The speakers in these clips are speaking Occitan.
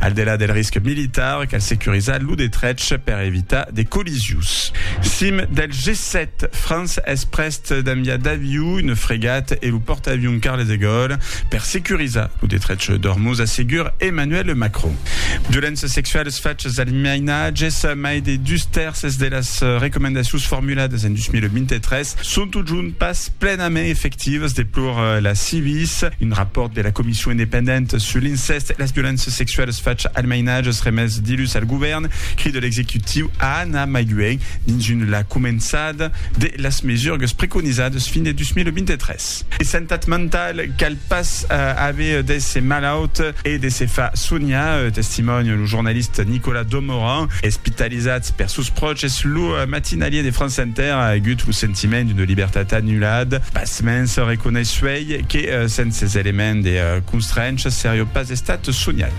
Al delà del risc militar, cal securizar lo detrech per evitar de collisions. Sim del G7, França es prèst d'enviar d'aviu, una fregat e lo pòrtaavion Charles de Gaulle per securizar lo detrech d'Ormuz, assegur Emmanuel Macron. Violéncias sexualas, fachas al mainatges, mai de dus tèrces de las recomendacions formuladas en 2023 son totjorn pas plenament efectivas, deplora la Civis, un rapòrt de la Comission Comission independente sur l'incèst e las violéncias sexualas facha al mainatge remés dilhus al govèrn, crida l'executiu a anar mai luènh dins un la començada de las mesurgas preconizadas fin de 2023. De santat mentau cal pas aver d'èsser malaut e de se far sonhar, testimònia lo jornalista Nicolas Domoran. Espitalizat per sos pròches, lo matinalier de France Inter a agut lo sentiment d'una libertat anulada. Pasmens, reconeissuèi Ei que, sens ces elements de constrencha, serió pas estat soniat.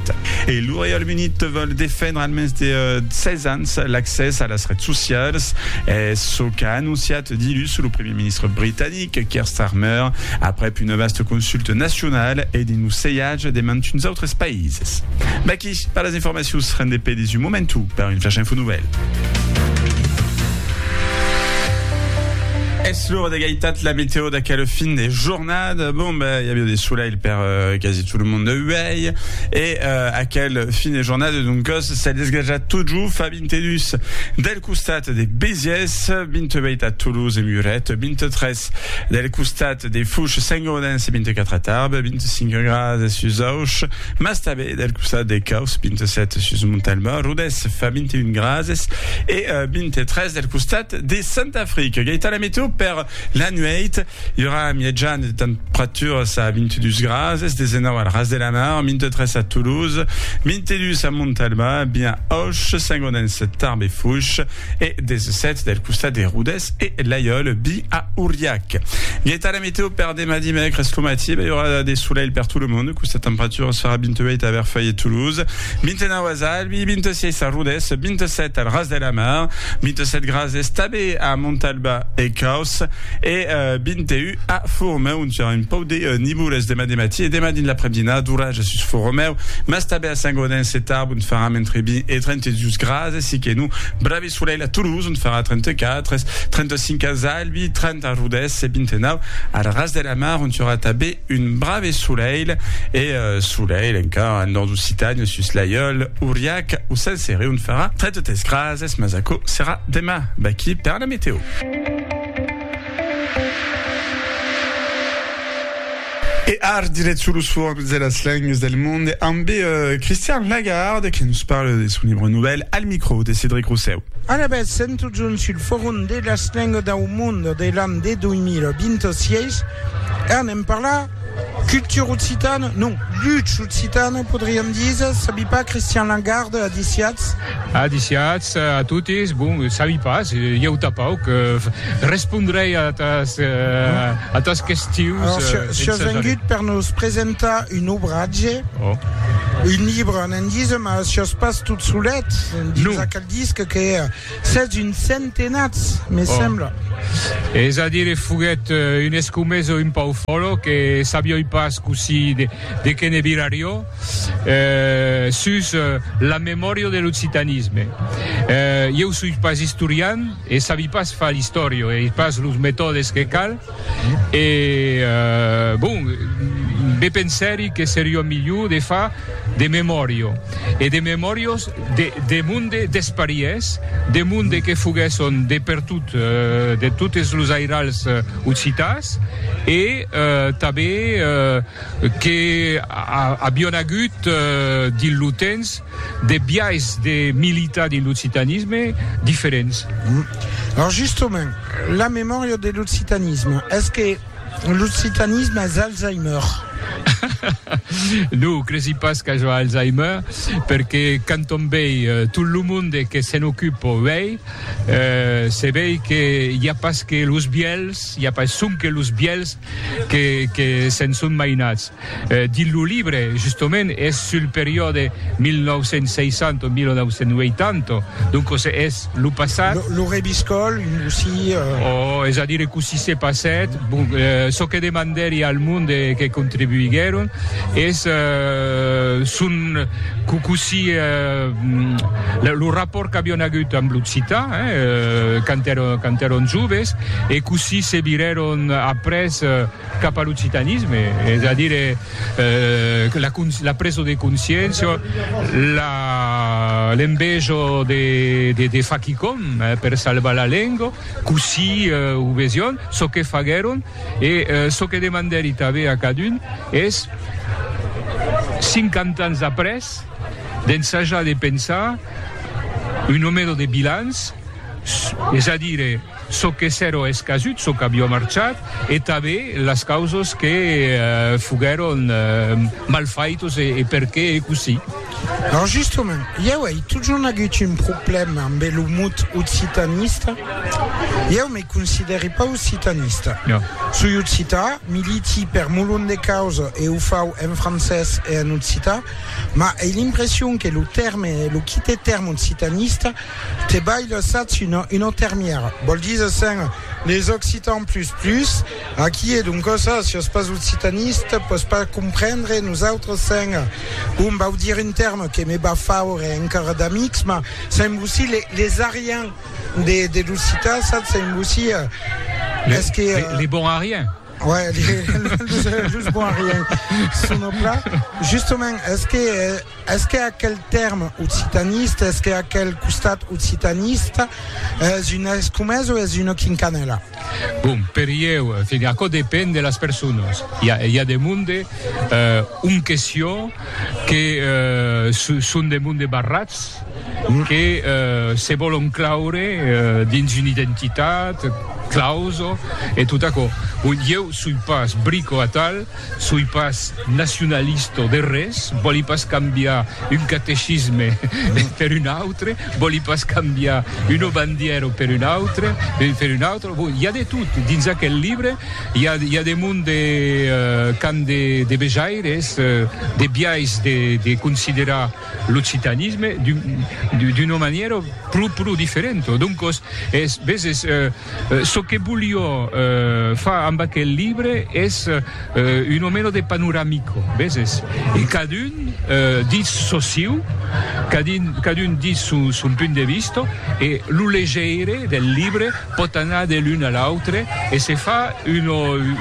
E lo Reialme Unit vòl defendre almens de 16 ans l'accès a las rets socialas. Es çò qu'a anonciat dilhus lo primièr ministre britanic, Keir Starmer, aprèp una vasta consulta nacionala e dins lo sejatge de mantuns autres païses. Merci per las informacions. Rendez pe dins un momentu per un Flash Info Nouvèl. Es l'ora d'egalitat la meteo d'aquel fin de jornada. Bon, ben, hi avia de soleil per uh, quasi tot le monde uèi. E uh, aquel fin de jornada, donc, s'est desgraja tot jo fa 22 del costat de Béziers, 28 a Toulouse et Muret, 23 del costat de Fouche, Saint-Gaudens et 24 à Tarbes, 25 grades à Suzauche, Mas tanben del costat de Causse, 27 sus Montalba, Rodés fa 21 grases e 23 del costat de Sant'Afric. Gaita la meteo per la nuèit, i aurà mièjan de temperaturas a 22 grases, 19 al ras de la mar, 23 a Toulouse, 22 a Montalba, bien Auch, Saint-Gaudens, Tarbes e Foix. e des sèts del costat de Rodés e Laiòl bi a Auriac. Gueta la meteo per demà dimècres lo matí, bèi ora de solelh per tot lo mond, costa temperatura serà 28 a Verfèi e Toulouse, 29 a Zalbi, 26 a Rodés, 27 al Ras de la Mar, 27 grads estabe a Montalba e Caus e 21 a Foromèu. Serà un pauc de nivoles demà de matí e demà dins l'apremdina, d'oratge sus Foromèu, mas tanben a Saint-Gaudens e Tarbes ont farà mentre 20 e 32 grads. Casa Siquenu, Bravi Solelh a Toulouse ont farà 34 es, 35 a Zalbi, 30 a Rodés e 29 al Ras de la Mar ont i aurà tanben un Brave Solelh e Solelh encara en Nòrd Occitània, sus l'Aiòl, Auriac o Sant Cere ont farà 33 grads es, mas aquò serà demà. Vaquí per la meteo. E ar diret sur los formes de las lengues del monde ambe Christian Lagarde que nos parle de son libre novèl al micro de Cedric Rossèu. Alavetz, sèm totjorn sul forum de las lengues dau monde de l'an de 2026 e anem parlar cultura occitana, non, lucha occitana podriam díser, sabi pas, Christian Lagarde, adiciatz? Adiciats a totes, bon, sabi pas, ieu tapau que respondrei a atas, a atas questions. Alors, si, si as vengut per nos presentar un obratge, oh. un libre en endisa, mas si as pas tot solet, dins no. aquel disc que sètz un centenat, me oh. sembla. És a dire, foguèt un escomesa un pau fòlo que sabioi pas cossí de, de que ne virario, sus la memòria de l'occitanisme. Ieu soi pas istorian e sabi pas far l'istòria, e ai pas los metòdes que cal, e bon, be pensèri que seriá milhor de far de memòria, e de memòrias de monde despariés, de monde que foguèsson de pertot, de totes los airals occitans, e tanben que avion agut dins lo temps de biais de militar dins l'occitanisme diferents. Lors justement, la memòria de l'occitanisme, es que l'occitanisme es Alzheimer? Non, cresi pas qu'aja Alzheimer, perque quand òm vei tot lo monde que se'n ocupa uèi, se vei que i a pas que los vièlhs, i a pas sonque los vièlhs que que se'n son mainats. Dins lo libre, justement, es sul periòde 1960 o 1980, doncos es lo passat. Lo rebiscòl, cossí? O, es a dire, cossí se passèt. Bon, çò que demandèri al monde que contribuiguèron es son co, cossí, lo rapòrt qu'avián agut amb l'occitan, hein, quand èron, quand èron joves e cossí se virèron. Son après cap a l'occitanisme, es a dire la preso de consciéncia, l'enveja de far quicòm per salvar la lenga, cossí o vesián, çò que faguèron e çò que demandèri tanben a cadun es, cinquanta ans après, d'ensajar de pensar un nomèro de bilans, es a dire, çò que s'èro escasut, çò qu'avió marchat e tanben las causas que foguèron mal faitas e perqué e cossí. Lors justament, ieu ei totjorn agut un problèma ambe lo mot occitanista. Ieu me considèri pas occitanista. Soi occità, militi per molon de causas e o fau en francés e en occità, mas ei l'impression que lo tèrme e lo quite tèrme occitanista Te balh lassatz una una termièra, vòl díser sens les occitans plus plus, aquí e donc ça, si sos pas occitaniste pòs pas comprendre nosautres sens bon vau dire un terme que me va faure encara d'amics mas sens vosí les les ariens de de l'occitan satz sens vosí es que. Les bons ariens. Ouais, just bon rien. Sono plat. Justement, est-ce que est-ce que aquel terme occitaniste, est-ce que aquel costat occitaniste és una escomesa o és una quincanela? Bon, per ieu, aquò depend de las personas. Hi a, hi a de monde, euh, un question, que son de monde barrats, que se vòlon claure dins una identitat clauso e tot aquò. Bon, ieu soi pas brico atal, soi pas nacionalisto de res, vòli pas cambiar un catecisme per un autre, vòli pas cambiar una bandièra per un autre, per un autre, bon, i a de tot dins aquel libre. I a i a de monde de qu'an de de vejaires de biais de de considerar l'occitanisme d'un d'un d'una manièra pro pro diferenta. Doncos, es veses çò que volió far amb aquel libre es una mena de panoramica, veses? E cadun ditz çò siu, cadun cadun ditz son son punt de vista e lo legeire del libre, Pòt anar de l'un a l'autre e se fa una,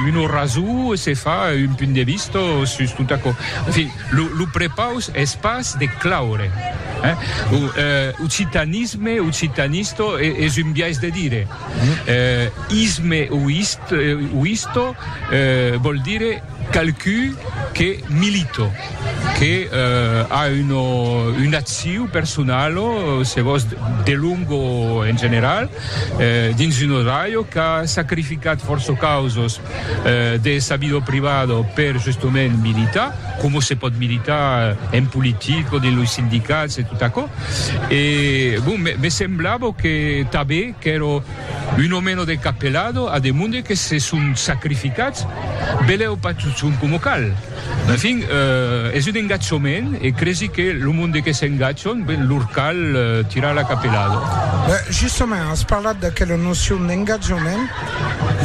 un orazu, se fa un punt de vista sus tot aquò. En fin, lo, lo prepaus es pas de claure, hein? O, eh, occitanisme, occitanista, e, es un biais de dire. Eh, isme o ist, o isto, eh, vòl dire. Qualcú que milito, que a una una acciu personal o se vos de long o en general dins una ràdio qu'a sacrificat fòrça causas de sa vida privada per justament militar, coma se pòt militar en politic o dins los sindicats e tot aquò. E bon, me semblava que tanben qu'èra Un o meno de Capelado a demonde que se son sacrificats, belèu pas totson coma cal. En fin, es un engatjament e cresi que lo monde que s'engatjon, ben, lor cal tirar la Capelado. Ben, justament, as parlat d'aquela nocion d'engatjament.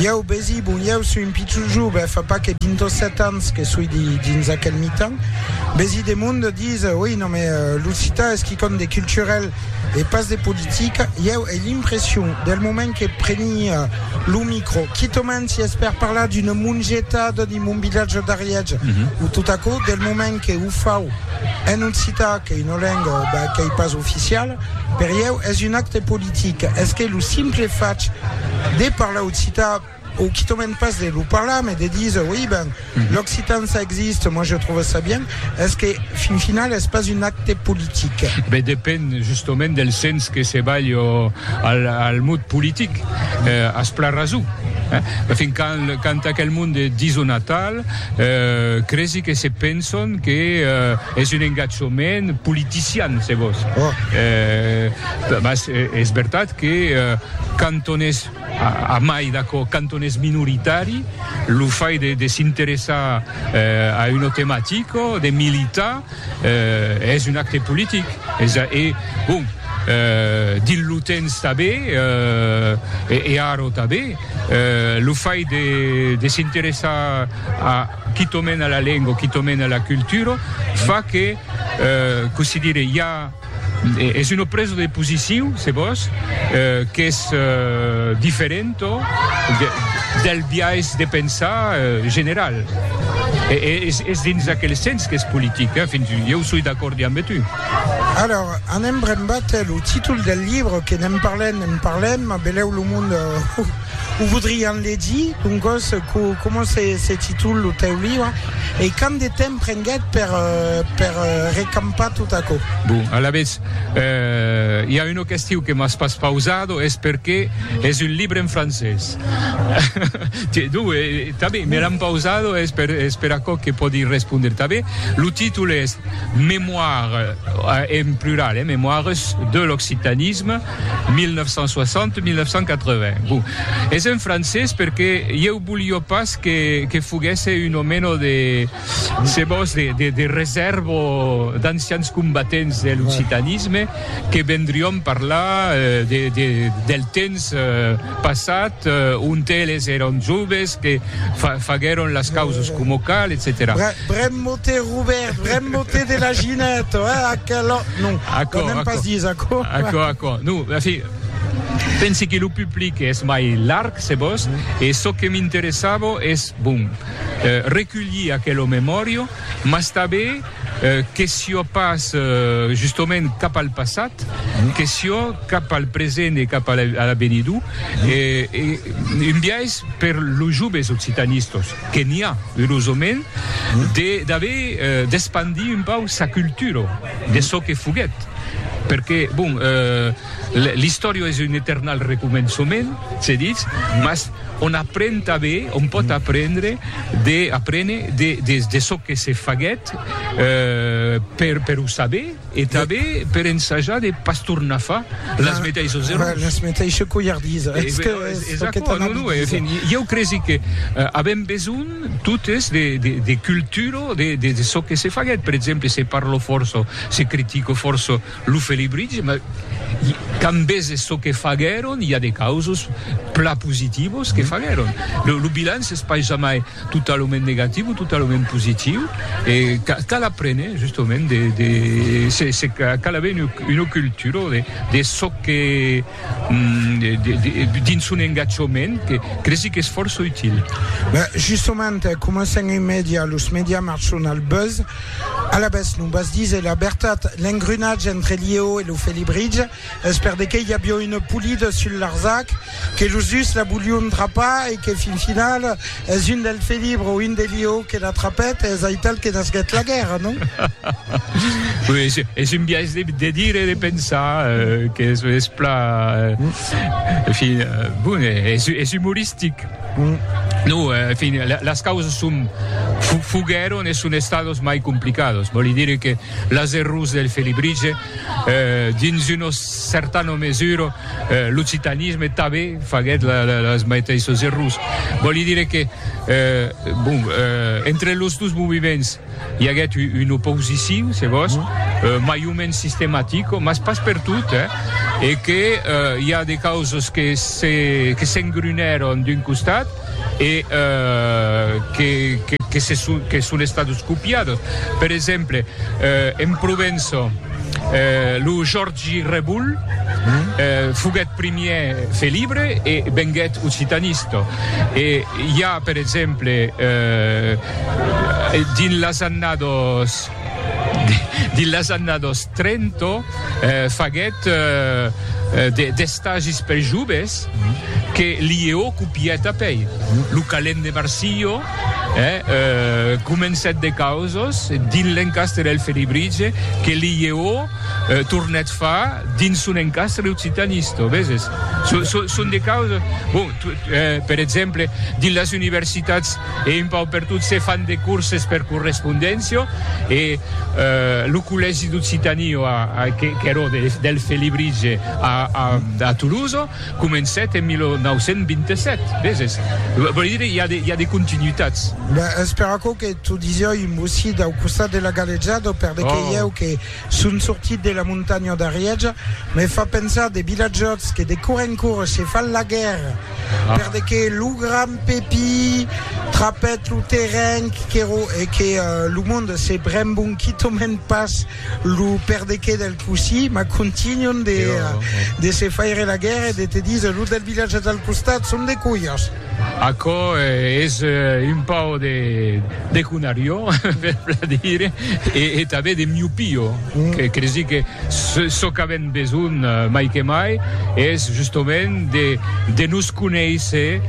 Ieu, besi, bon, ieu soi un pichon jove, fa pas que vint o sèt ans que soi dins aquel mitan, besi demonde, dise, oi, non, mais l'occitan es quicòm de culturel, e pas de politica, ieu ai l'impression, del moment que prenia lo micro, quitament si es per parlar d'una mongetada dins mon vilatge d'Arièch, mm -hmm. o tot aquò, del moment que ho fau en occità, que una lenga bah, que ei pas oficiala, per ieu es un acte politic. Es que lo simple fach de parlar occità Ou qui te mène pas de lo parlar mais de dire oui ben l'occitan ça existe moi je trouve ça bien est-ce que fin final est pas un acte politique ben depend justement del sens que se balhe al, al mot politique euh, as pla rason eh? fin quand, quand aquel monde dison atal euh, cresi que se penson que euh, es un engatjament politician se vos oh. euh, mas es vertat que euh, quand on es A mai d'aquò, quand on es minoritari, lo fait de, de s'interessar a una tematica, de militar, es un acte politic. Es a, e, bon, dins lo temps tanben, e ara tanben, lo fait de, de s'interessar a, quitament a la lenga, quitament a la cultura, fa que, cossí dire, i a, Es una presa de posiciu, se vòs, qu'es diferenta del biais de pensar general. Es dins aquel sens qu'es politic. Ieu soi d'acòrd damb tu. Alors, anem brembat. Lo títol del libre, que ne'n parlem, ne'n parlem, belèu lo monde. O voudrián legir, doncòs, co, coma se, se titol lo tèu libre? E quant de temps prenguèt per, per recampar tot aquò? Bon, alavetz, eh, i a una question que m'as pas pausado, es perqué es un libre en francés. Tiens, donc, eh, tanben, me l'an pausado, es per, es per aquò que pòdi respondre tanben. Lo títol es Mémoires, en plural, eh, Mémoires de l'occitanisme. 1960-1980. Bon, es en francés perque ieu bolio pas que, que foguèsse un omeno de, se vos, de, de, de resèrva o d'ancians combatents de l'occitanisme que vendrión parlar de, de, del temps passat ont eles èron joves, que fa, faguèron las causas coma cal, etcetèra. Bremmote, Robèrt, bremmote de la Ginèt, eh, aquela... Non, Acò, n'èm pas acò. dís aquò. Acò, acò. Non, en fin, pensi que lo public es mai larg, se vòs, e çò que m'interessava es, bon, eh, reculhir aquela memòria, mas tanben, eh, que siá pas, eh, justament cap al passat, que siá cap al present e cap a l'avenidor, eh, e un biais per los joves occitanistas. que n'i a urosament de d'aver d'espandir un pauc sa cultura de çò que foguèt perque bon l'istòria es un eternal recomençament se ditz mas on apren tanben on pòt aprendre de aprene de de çò que se faguèt per per o saber E tanben per ensajar de pas tornar far las meteissas errors. Las meteissas colhardisas. Es que es aquò que t'an a dit. En fin, ieu cresi que avèm besonh totes de cultura de çò que se faguèt. Per exemple, se parla fòrça, se critica fòrça lo Felibritge, mas quand veses çò que faguèron, i a de causas plan positivas que faguèron. Lo bilanç es pas jamai Totalament negatiu o totalament positiu e cal aprene justament de de se cal aver una cultura de de çò que dins son engatjament que cresi qu'es fòrça util. Justament coma sens un media los media marchon al buzz, alavetz non vas díser la vertat, l'engrenatge entre Liéo e lo Felibritge. Es per de qué i avió une polida sul Larzac, que los dus la volión trapar e que fin final es un del Felibre o un de Lió que la trapèt e es aital que nasguèt la guèrra, non? Oui, es un biais de dire e de pensar que es pla, en fin, bon, es humoristic. No, en fin, las causas son, foguèron e son estados mai complicados, vòli dire que las errors del Felibrige, Dins una certana mesura, l'occitanisme tanben faguèt las maiteissas errors. Vòli dire que, bon, entre los dos movements i aguèt una oposicion, se vòs, mai o mens sistematica, mas pas pertot, e que i a de causas que s'engrunèron d'un costat, e que son estados copiados. Per exemple, en Provença, lo Jòrgi Rebull foguèt primièr felibre e venguèt occitanista. E i a, per exemple, dins las annadas. Dins las annados trenta faguèt d'estagis per joves que Liéo copièt apèi. Lo calent de Marsilho comencèt de causos dins l'encastre del Felibritge que Liéo tornèt far dins son encastre occitanisto, veses? Son de causos, bon, per exemple, dins las universitats, E un pauc per tot se fan de corses per correspondéncia e lo collègi d'Occitanie qu'èra del Felibritge a Toulouse comencèt en 1927, veses? Vòli dire i a de continuitats. Ben, es per aquò que t'o disiá un bocit au costat de la galejada, per de que ieu que son sortit de la montanha d'Arièja, me fa pensar de vilatjòts que de cor en cor se fan la guèrra. Perde que lo grand Pepi trapèt lo terren qu'èro e que lo monde se brembon quitament pas lo perde que del cossí, mas contínuon de de se faire la guèrra e de te díser los del vilatge del costat son de colhas. Aquò es un pauc de. De conariò, per bladire, e e tanben de miopio, que cresi que çò qu'avèm besonh mai que mai es justomènt de de nos conéisser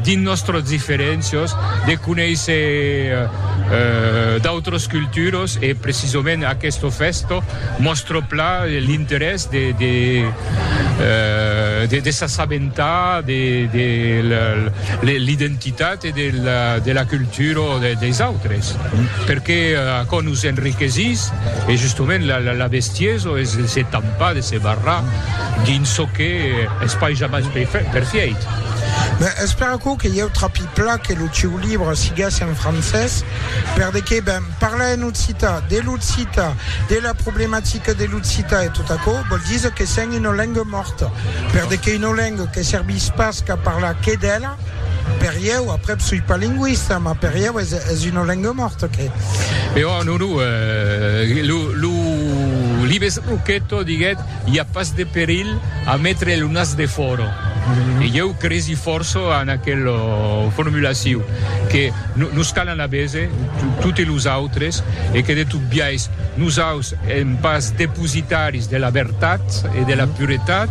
dins nòstros diferéncios, de conéisser d'autros culturos e precisomènt aqueste fèsto mòstre plan l'interès de de de de s'assabentar de de l'identitat. de la cultura des autres perque aquò nos enriquesís e justement la bestiesa es de se tampar de se barrar dins çò que es pas jamai perfièit. Ben es per aquò que ieu trapi pla que lo sieu libre siguesse en francés per de que ben parlar en occitan de l'occitan de la problematica de l'occitan e tot aquò vòl díser que sèm una lenga mòrta per de que una lenga que servís pas qu'a parlar que d'ela Per ieu, après suis pas linguiste, ma per ieu es, es una lenga morta que. Mais oh, non, non, euh, lo, lo libes Roqueto diguet, il y a pas de perill à mettre le nas de fora. Mm. E ieu cresi força en aquel uh, formulaciu que nos calan a bese tutti los autres e que de tot biais Nosaus èm pas depositaris de la vertat e de la puretat,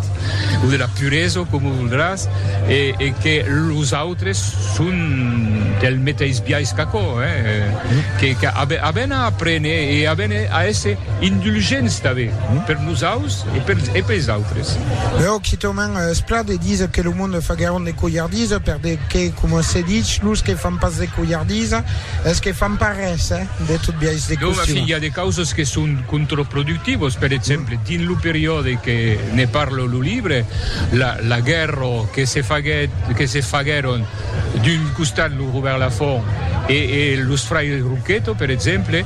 o de la puresa, coma voldràs, e que los autres son del meteis biais qu'aquò, que avèn a aprene e avèn a èsser indulgents tanben per nosaus e pels autres. Lèu quitament es plan de díser que lo monde faguèron de colhardisa, perque, coma se dich, los que fan pas de colhardisa es que fan pas res. De tot biais de costum. Dònc, i a de causas que son contraproductivas. Per exemple, dins lo periòde que ne parla lo libre, la, la guèrra que se faguèt, que se faguèron d'un costat lo Robèrt Lafont e, e los fraires Rouqueto, per exemple,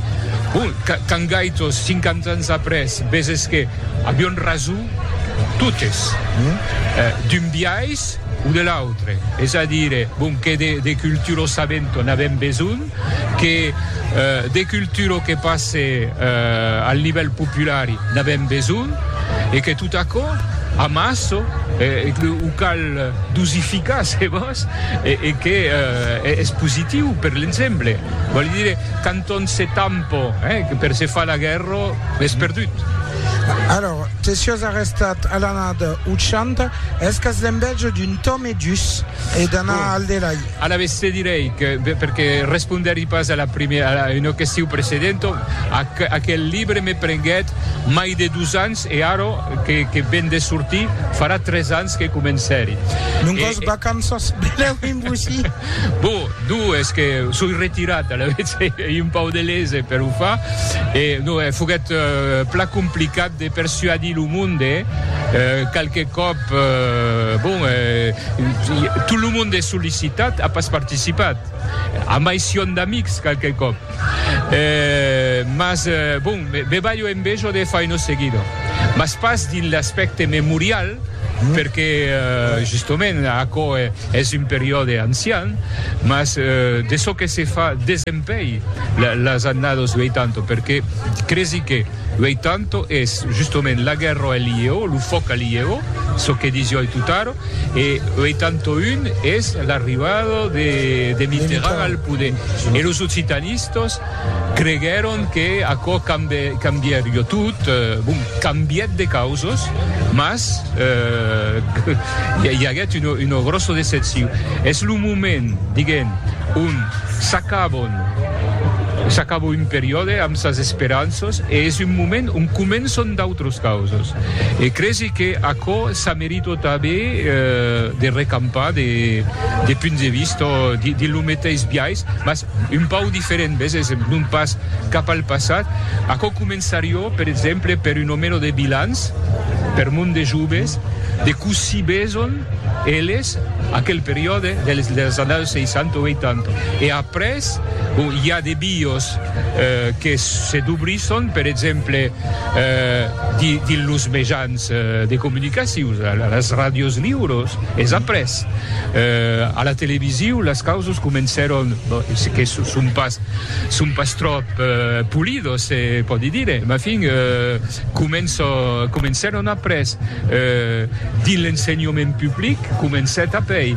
bon, quand gaitos, 50 ans après, veses que avián rason totes, d'un biais o de l'autre, es a dire, bon, que de, de cultura sabenta n'avèm besonh, que de cultura que passe al nivèl populari n'avèm besonh e que tot aquò amassa e que o cal dosificar se vòs e que es positiu per l'ensemble vòli dire quand on se tampa per se far la guèrra es perdut. Alòr que siós arrestat a l'anada 80 es qu'as l'envèja d'un Tom e dus E d'anar al delai. Alavetz te direi que, perque respondèri pas a la primièra, a una question precedenta, aquel libre me prenguèt mai de dos ans e ara que ven de sortir farà tres ans que comencèri. Non qu'os vacanças velèu imbusir. Bon, donc es que soi retirat, alavetz ei un pauc de lese per o far. E non, foguèt plan complicat de persuadir lo monde, qualque còp, Bon, tot lo monde es sollicitat, a pas participat, a mai sión d'amics qualque còp, mas bon, me balho envejo de Faino Seguido, mas pas dins l'aspècte memorial, perque justement aquò es un periòde ancian, mas de çò que se fa desempeir las annados 80, perque cresi que. Uei tanto es justoment la guerra a lieu, lo fòc a lieu, çò que disio ai totaro, e uei tanto un es l'arribada de Mitterrand al poder. E los occitanistas creguèron que aquò cambièrio tot, bon, cambièt de causas, mas i aguèt una gròssa decepcion. Es lo moment, diguem, ont s'acabon S'acaba un periòde amb sas esperanças e es un moment ont començan d'autras causas. E cresi que aquò s'a merita tanben de recampar de punts de vista dins lo meteis biais, mas un pauc diferent, ves, es non pas cap al passat. Aquò començariá, per exemple, per una mena de bilanç per mon de joves de cossí veson eles. Aquel periòde dels annaus 60 o 80. E après, bon, i a de bios que se dobrisson, per exemple, dins los mejans de comunicacion, las ràdios liuros, es après, a la televisiu, las causas comencèron, que son pas tròp polidos, se pòdi dire, mafin, Començo, comencèron après dins l'ensenhament public, comencèt apei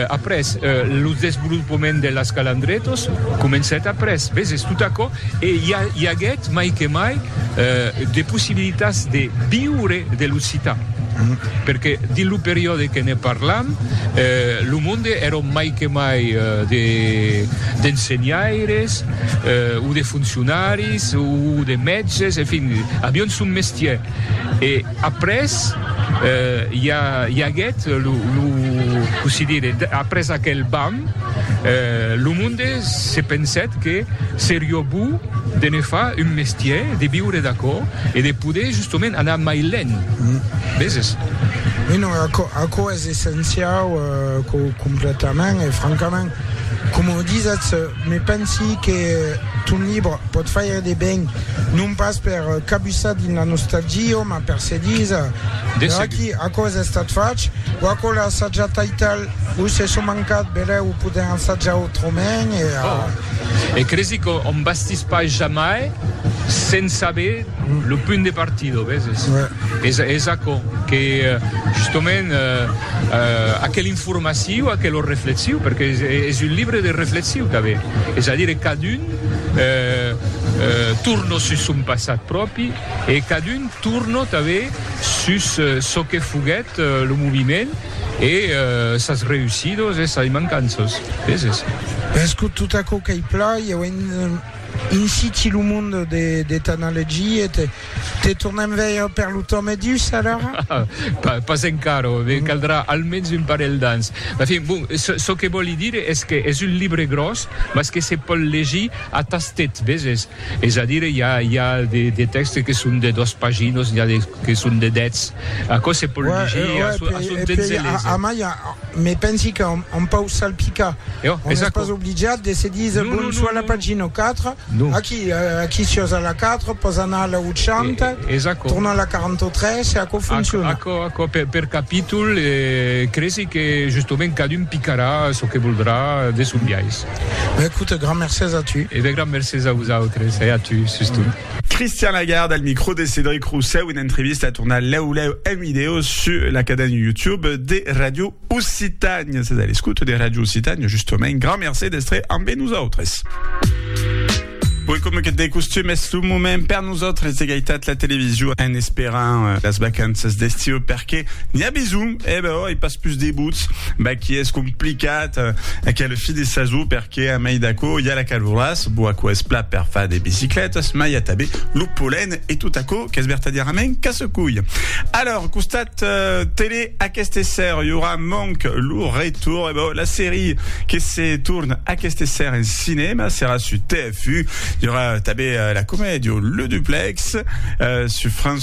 après lo desvolopament de las calandretos, comencèt après, veses, tot aquò e i a, i aguèt mai que mai de possibilitats de viure de l'occitan, perque dins lo periòde que ne parlam lo monde èron mai que mai de d'ensenhaires, o de foncionaris o de mètges, en fin, avián son mestièr. E après, i a, i aguèt lo, lo, cossí dire, après aquel bam, lo monde se pensèt que serió bo de ne far un mestièr, de viure d'aquò e de poder justament anar mai lent, veses? Aquò es essenciau, completament e francament. Coma o disatz, me pensi que ton libre pòt faire de ben, non pas per cabussar dins la nostalgia, mas per se díser, De aquí aquò es estat fach, o aquò l'a assajat taital, o se son mancat, belèu o podèm assajar autrament, e a. E cresi qu'òm bastís pas jamai sens saber lo punt de partida, o veses? Es aquò que, justement, aquel. formaciu a que lo reflexiu, perque es un libre de reflexiu tanbe, es a dire cadun torno sus son passat pròpi e cadun torno tanbe sus çò que foguèt lo moviment e sas reussidos e sas mancanças, peses. Escot tot aquò qu'ei plan, ieu inciti lo monde de t'anna legir e te. Te tornem veir per lo tòme dus, alara? Pas, pas encara, me caldrà almens un parelh d'ans. En fin, bon, çò que vòli dire es que es un libre gròs, mas que se pòl legir a tastet, veses? Es a dire, i a, i a de, de tèxtes que son de dos paginos, n'i a de que son de dètz. Aquò se pòl legir a son, a son temps e léser. A mai, me pensi qu'an, an pau salpicar. On n'es pas obligat de se díser, bon, soit la pagina 4, Aquí, aquí siós a la 4, pòs anar a la 80, tornar a la 43 e aquò fonciona. Aquò, aquò, per, per capítol, e cresi que justament cadun picarà çò que voldrà de son biais. Ben écoute, grand mercés a tu. E ben grand mercés a vosautres e a tu, sustot. Christian Lagarde al micro de Cédric Roussel, una entrevista a tornar lèu lèu en vidèo sus la cadena YouTube de Radio Occitània, sètz a l'escouta de Ràdio Occitània, justament, grand mercé d'èstre ambe nosautres. Oi coma que de costum es lo moment per nosautres de gaitat la television en esperant euh, las vacanças d'estiu perque n'i a besonh, e eh ben oi, pas pus de buts, ben qui es complicat euh, aquel fin de sason per Que a mai d'aquò i a la caloràs, bo aquò es plat per far de biciclètas, mai a tabé lo polen e tot aquò qu'es vertadièrament casse-cuilh. Alòr, costat tele aqueste esser i aurà manc lo retorn, e bo, la serie que se torn aqueste esser en cinèma serà su TF1, i aurà tabé la comèdia Le Duplex su France.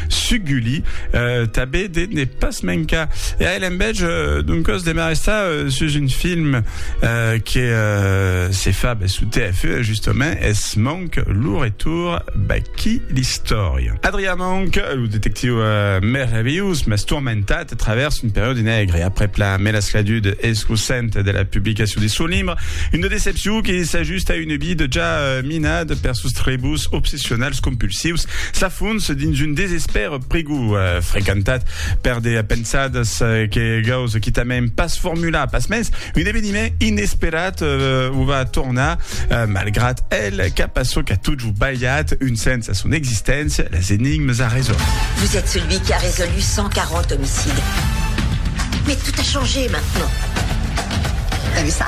Suguli, tabé de ne pas mencar. E a l'enbètz d'un còs de marestar sus un film que se fa bèth suu TF1 e justament es Monk, lo retour baquí l'istòria. Adrian Monk, lo detectiu merveillós mas tourmentat a travèrs un periòdi negre aprèp la melascladud escosenta de la publicacion de son libre, una decepcion que s'ajusta a una vida ja minada per sos trebos obsessionnels. Sonals compulsius s'afons dins un desespèr prigou, frequentat per de pensadas que gaus quitament pas formular. Pasmens, un eveniment inesperat o va tornar, malgrat el, cap a çò qu'a totjorn balhat un sens a son existéncia, las enigmas a résoldre. Vous êtes celui qui a résolu 140 homicides. Mais tout a changé maintenant. T'as vu ça?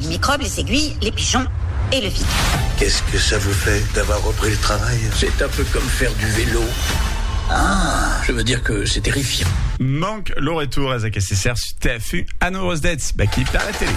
Les micròbes, les aiguilles, les pigeons et le vide. Qu'est-ce que ça vous fait d'avoir repris le travail? C'est un peu comme faire du vélo. Ah! Je veux dire que c'est terrifiant. Manc lo retour es aqueste ser su TFU a 9 ores dètz d'aquí per la tele.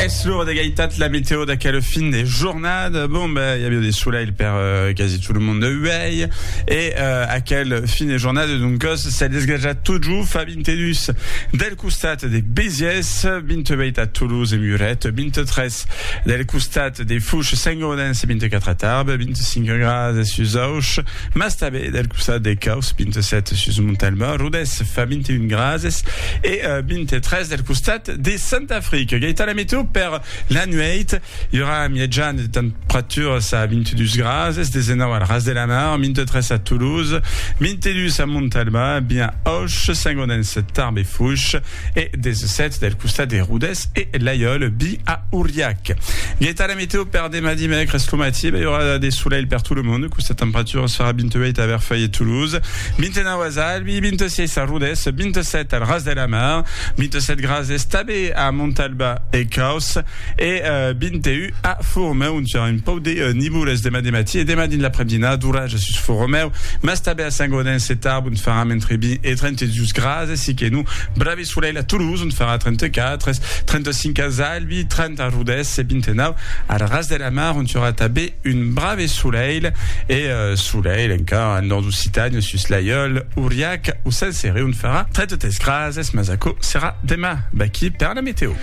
Es l'ora d'egaitat la meteo d'aquela fin de jornada. Bon, ben, i aviá de solelh per uh, quasi tot lo monde uèi. E uh, aquel fin de jornada, doncas, s'es desgrejat tot jo, Fabi. Vintedus del costat de Béziers, vint-e-uèit a Toulouse e Muret, vint-e-tres del costat de Fouches, Saint-Gaudens e vint-e-quatre a Tarbes, vint-e-cinc grases sus Auch, mas tanben del costat de Causse, vint-e-sèt sus Montalban, Rodés fa vint-e-un grases e vint-e-tres del costat de Santa Fric. Gaitana Meteo per la nuèit. I aurà un mièjan de temperaturas a 22 grases, 19 al Ras de la Mar, 23 a Toulouse, 22 a Montalban, 20 a Auch, Saint-Gaudens, Tarbes e Foix e 17 del costat de Rodés e Laiòl, 20 a Auriac. Gueta la meteo per demà dimècres lo matí, i aurà de solelh per tot lo mond, questa temperaturas farà 28 a Verfèil e Toulouse, 29 a Zalbi, 26 a Rodés, 27 al Ras de la Mar, 27 grases tanben a Montalban e Causse. E 21 a Foromèu, ont serà un pauc de nivoles demà de matí e demà dins l'aprèp-dinada d'oratges sus Foromèu, mas tanben a Saint-Gaudens e Tarbes, ont faràn entre 20 e 32 grases, e siquenons brave solelh a Toulouse, ont farà 34 es 35 as Albi, 30 a Rodés e 29 al Ras de la Mar, ont serà tanben un brave solelh, e solelh encara al nòrd d'Occitània, sus Laiòl, Auriac o Saint-Céré, ont farà 33 grases, mas aquò serà demà. Vaquí per la metèo.